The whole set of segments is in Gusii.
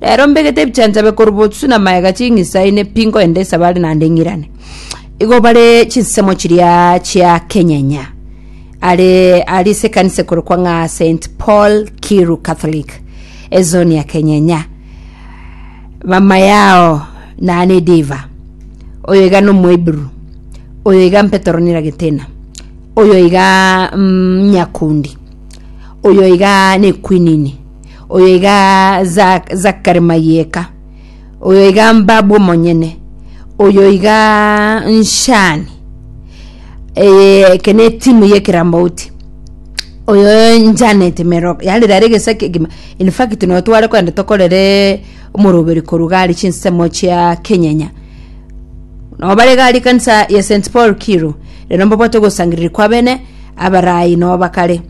Reero mbegete ebichanchabe korwa botsu na maega ching'isa ine pi ngoende esabari naende ng'irane. Igo bare chinsemo chiria chia Kenyenya. Are ari ase ekanisa ekorokwa ng'a St Paul Kiru Catholic ezoni ya Kenyenya. Mama yao nane Diva. Oyo iga nomoiburu. Oyo iga Petero Niragetina. Oyo iga mm, Nyakundi. Oyo iga nekwinini. Oyo iga Za- Zakari Mayeka, oyo iga Mbabu omonyene, oyo iga Nshani, eh, eke ne timu y'ekeramauti oyo Janet Mero yaani rero egesa kegima in fact noyo tware kogenda tokorere omoroberi korwa iga aria chinsemo chia Kenyenya nabo bare iga aria ekanisa ya St Paul Kiru rero mbabwate ogosangererekwa abene abarai nabo bakare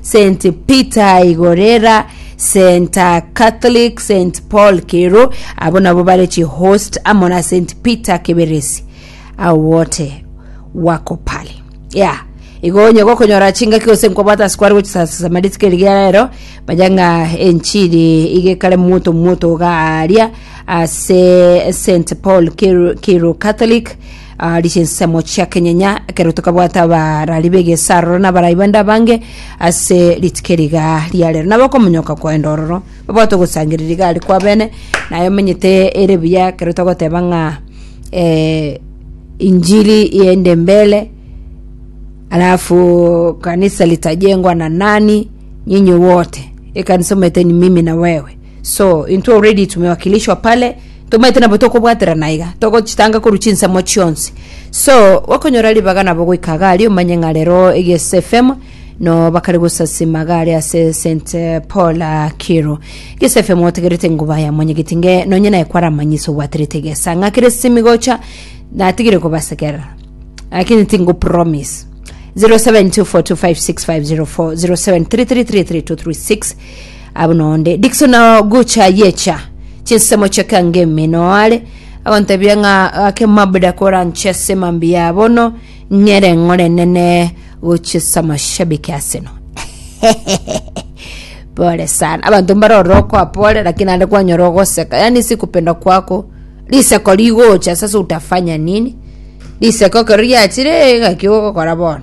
St Peter Igorera, St Catholic, St Paul Kero, abo nabo bare chihost amo na St Peter Kiberesi, ao wote wako pale ya igo onye gokonyora chingaki gose nkobwata ase kware gochisaasasa marituko erigiya rero manya ng'a enchiri igekare moto moto iga aaria ase St Paul Kero Kero Catholic Aaria chinsemo chia kenyenya ekero tokabwata abarari b'egesaaroro na abarai bande abange ase rituko eri iga ria rero. Nabo okomonyoka kwaenda ororo, babwate ogosangereria igare kwabene, naye omenyete ere buya ekero togoteba ng'a eh, injili iende mbele, alafu kanisa litajengwa na nani? Nyinyi wote. Ekanisa omaete ni mimi na wewe. So intwe already tumewakilishwa pale tomaete nabo tokobwaterana iga togochitanga korwa chinsemo chionsi so gokonyora ribaga nabo goika iga aria omanye ng'a rero egese fm no bakare gosasima iga aria ase st paul ah, kiro egese fm otegerete ngoba yamonyegeti nge nonye naye kwaramanyisa obwaterete egesa ng'a kere simi gocha natigire kobasekerera lakini tingo promise 0724256504 0733332336 abo nonde dikso na gucha yecha chinsemo chia kangemi noare agontebia ng'a ake mabuda koranche ase mambi ya bono ng'ere ng'ore nene gochia ase amashabiki aseno pole sana abanto mbare ororo okoa pole lakini ande kwanyora ogoseka yani si kupenda kwako riseko rigocha sasa utafanya nini riseko ekero riachire ng'aki ogokora bono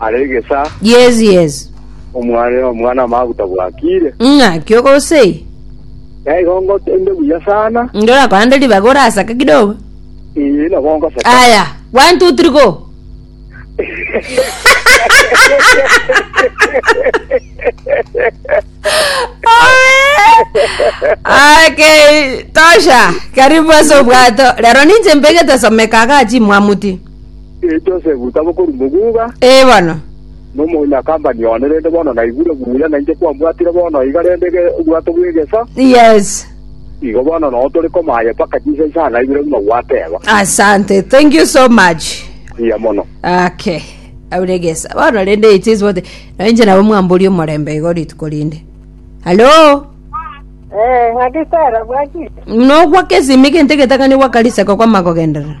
Are egesaa, Yes, yes. omwana omwana o maguta bwakire. Ng'aki ogosei. Na igo ngotembe buya sana. Nde orakorande ribaga orasake kidogo. Ee, nabo ngoseka. Aya, one, two, three, go. Okay, tosha. Karibu ase obwato. Rero ninche mbegete someka agachi mwamuti. Ee, Josefu, tabokorwa moguga. Ee bono. Nomonyakampani one, rende bono naigure buya nainche kwambwatire bono iga rende ge- obwato bw'egeso. Yes. Igo bono noo tore komaye mpaka chinsa isano na ibere buna gwateba. Asante. Thank you so much. Buya mono. Okay. Auregesa. Bono rende it is what nainche nabo mwambori omorembe igo rituko rinde. Hello. Eh, ng'akisara bwaki. Nogwa kesimi gente getakani gwa kariseko kwa magogenderera.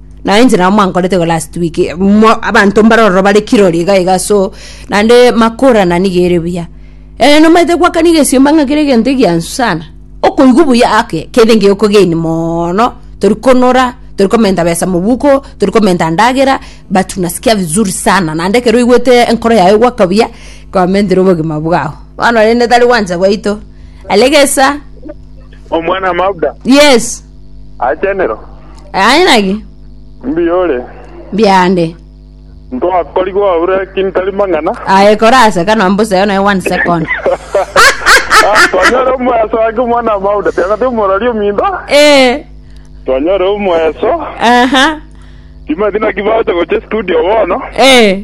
na inche nabo mwankorete iga last week mo- abanto mbare ororo bare kirori iga iga so naende makorana niga ere buya Eh, nomaete goakana egesiomba ng'a kere egento egiansu sana okoigwa buya ake kere ngeokogeini moono tori konora tori komenta besa mobuko tori komenta ndagera but unasikia vizuri sana naende ekero oigwete enkoro yaye egoaka buya kwamentire obogima bwao bono rende tari gwancha gwaito alegesa Omwana Mabda, yes achenero. Aye naki Mbuya ore. mbiande. Ntwakorigwe aure ki ntari mang'ana. Aye kora ase kanwa mbuseo naye one second. Ah, Twanyore omoeso ake omwana wa Mauda. Tiagati omorori ominto. Eh. Twanyore omoeso. Aha. Timanyeti naki bagocha gocha studio bono. Eh.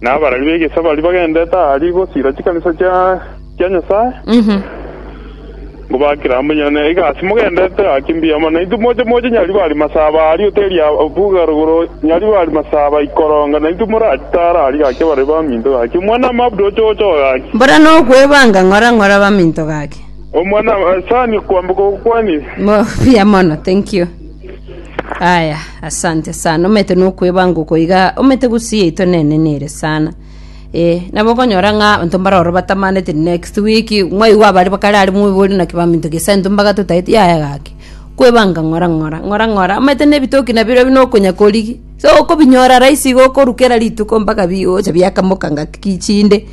na abarari b'egesaku baria bagendete aria gosiira chikanisa chia chia Nyasae, ngobakera amo inye, na egasi mogendete gaki mbuya mono. Naintwe moche moche nyari bari masaba aria oteria buga rogoro, nyari bari masaba ikoronga, naintwe moratara aria gaki abarari baminto gaki. Omwana amabuda oche oche oo gaki. Mbora nokwebanga ng'ora ng'ora baminto gaki. Omwana asani kwamboka okwani. Mo- buya mono thank you Aya, asante sana. Omete nokwebanga uko iga, omete gusi yaito nene nere sana. Eh, nabo okonyora ng'a abanto mbaroro batamanete next week, mwaigwa abare bakare are mwebori naki baminto gesa into mbaga totaeti yaya gaki. Kwebanga ng'ora ng'ora, ng'ora ng'ora, omanyete na ebitoki nabirobio buna okonya korigi. So okobinyora rahisi iga okorwa kera rituko mpaka bi ocha biakamoka ngaki ki chinde.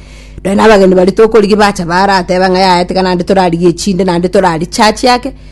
Nonya na abageni baria tokorigia bacha barateba ng'a yaya tiga naende torarigie chinde naende torari church ake.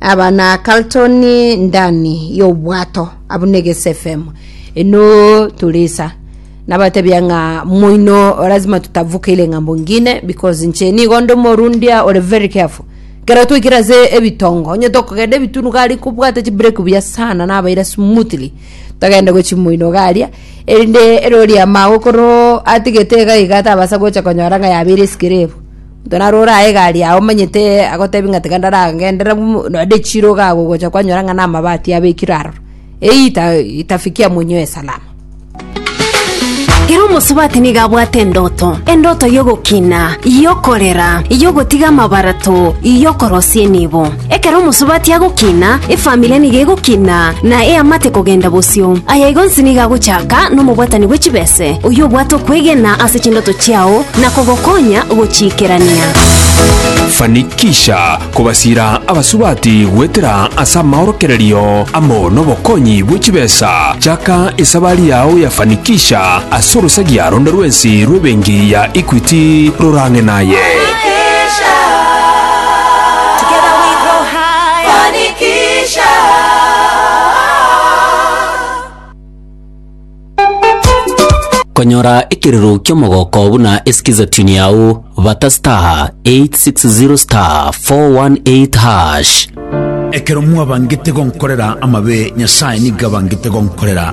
Aba na Carltoni ndani y'obwato abwo na egesefemu eno turisa nabatebia ng'a moino lazima tutavuke ile ng'ambo ngine because nche nigo nde omorundia ore very careful kero twaikire ase ebitongo onye tokogenda ebitunu gari nkobwate chibreki buya sana nabaira smoothly togende gochi moino iga aria erinde erori amago koro atigete iga iga tabasa gocha konyora ng'a yabeire esikire ebo Gena rore aye egari yao omanyete agotebie ng'a tiga ndaragenderere nonde chirogo agwo gocha kwanyora ng'a namabati abekirwe aroro, eyio itafikia monywe salama. Ere omosubati nigo abwate endoto, endoto y'ogokina, y'okorera, y'ogotiga amabarato, y'okorosia enibo. Ekero omosubati agokina, efamiri nigo egokina, na eamate kogenda bosio. Aya igo onsi nigo agochaka nomobwatani bwe chibese, oyio obwate okwegena ase chindoto chiao na kogokonya gochiikerania. Fanikisha kobasira abasubati goetera ase amaorokererio amo nobokonyi bwe chibesa. Chaka esabari yao ya Fanikisha ase orosagia ronde rwensi rw'ebenki ya Equity rorang'e naye. Konyora ekirero ki'omogoko buna esikiza tune yao bata star 860 star 418 hash. Ekero mwabangete gonkorera amabe, Nyasae nigo abangete gonkorera